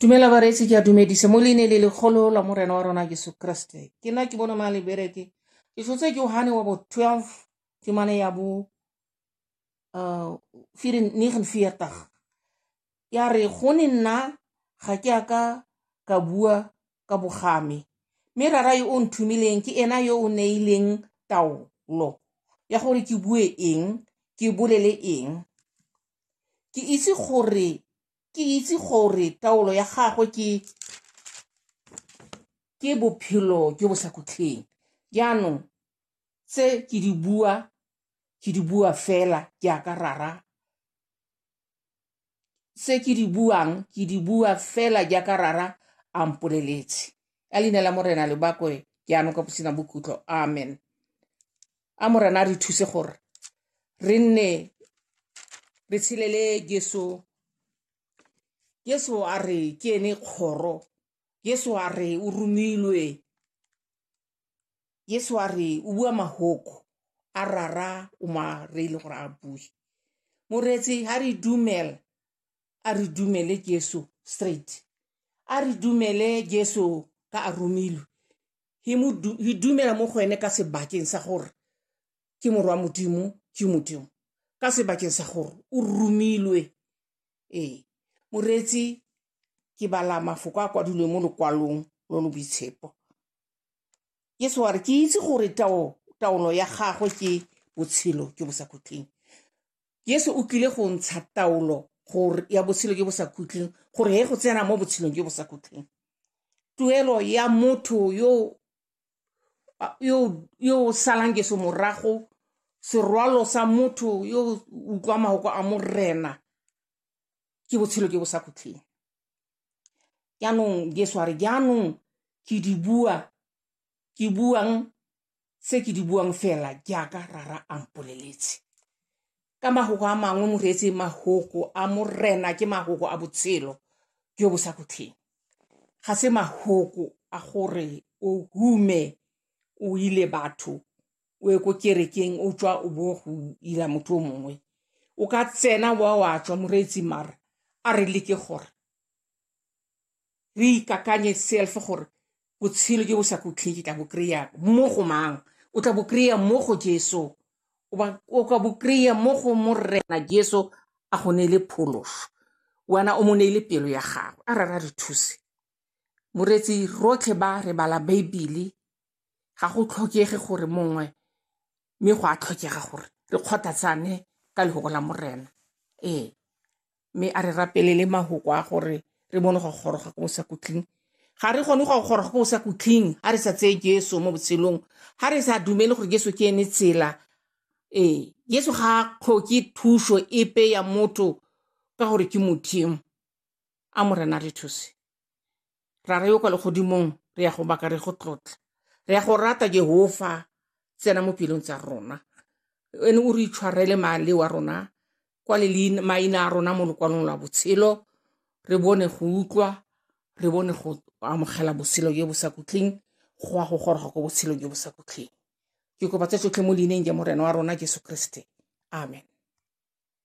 dumela bareetsi ke a dumedise mo leine le legolo la morena wa rona jesu kriste ke nna ke bona ma lebereke ke tshotse ke ohane wa bo 12 ke mane ya bo uh, 49 ya re go ne nna ga ke a ka ka bua ka bogame mme rara yo o nthumileng ke ena yo o neileng taolo ya gore ke bue eng ke bolele eng ke itse gore ke itse gore taolo ya gagwe ke ke bophelo jo bo sa khutlheng jaanong tse ke di bua ke di bua fela jaaka rara tse ke di buang ke di bua fela jaaka rara a mpoleletse ka leina la morena lebakwe jaanong ka bosina bokhutlo amen a morena re thuse gore re nne re tshelele jesu jesu a re ke ene kgoro jesu a re o romilwe jesu a re o bua mahoko a rara o mare e le gore a bue moreetsi ha re dumela a re dumele jesu straight a re dumele jesu ka a romilwe hi dumela mo go ene ka sebakeng sa gore ke morwa modimo ke modimo ka sebakeng sa gore o romilwe ee moreetsi ke bala mafoko a kwadilweng mo lokwalong lo lo boitshepo yesu wa re ke itse gore taolo ya gagwe ke botshelo jo bo sa khutleng Jesu o tlile go ntsha taolo gore ya botshelo jo bo sa khutleng gore he go tsena mo botshelong jo bo sa khutleng tuelo ya motho yo yo yo salang Jesu morago serwalo sa motho yo utlwa mahoko a morena ke botshelo jo bo sa khutleng jaanong Jesu a re jaanong ke di bua ke buang tse ke di buang fela jaaka rara a mpoleletse ka magogo a mangwe mo reetse magogo a morena ke magogo a botshelo jo bo sa khutlheng ga se magogo a gore o hume o ile batho o ye ko kerekeng o tswa o bo go ila motho o mongwe o ka tsena wa wa tswa moreetsi mara a re leke gore re ikakanye self gore botshelo jo bo sa kutlheng ke tla bo kry-a mo go mang o tla bo kry-a mo go jeso o ka bo kry-a mo go morena jeso a go neele pholoso wena o mo neele pelo ya gago a rara re thuse moreetsi rotlhe ba re bala baebele ga go tlhokege gore mongwe mme go a tlhokega gore re kgothatsane ka lehoko la morena ee mme a re rapelele mahoko a gore re bone go goroga ko bosakutleng ga re kgone go goroga ko bosakutleng ga re sa tseye jesu mo botshelong ga re sa dumele gore jesu ke ene tsela ee jesu ga a tlhoke thuso epe ya motho ka gore ke modimo a morena re thuse ra re yo kwa legodimong re ya go baka re go tlotla re ya go rata jehofa tsena mo pelong tsa rona ene o re itshwarele male wa rona kwa le maina a rona mo lokwalong lwa botshelo re bone go utlwa re bone go amogela botshelo jo bo sa kutleng go a go goroga ko botshelo jo bo sa kutleng ke kopa tse tsotlhe mo leineng ja morena wa rona jesu kriste amen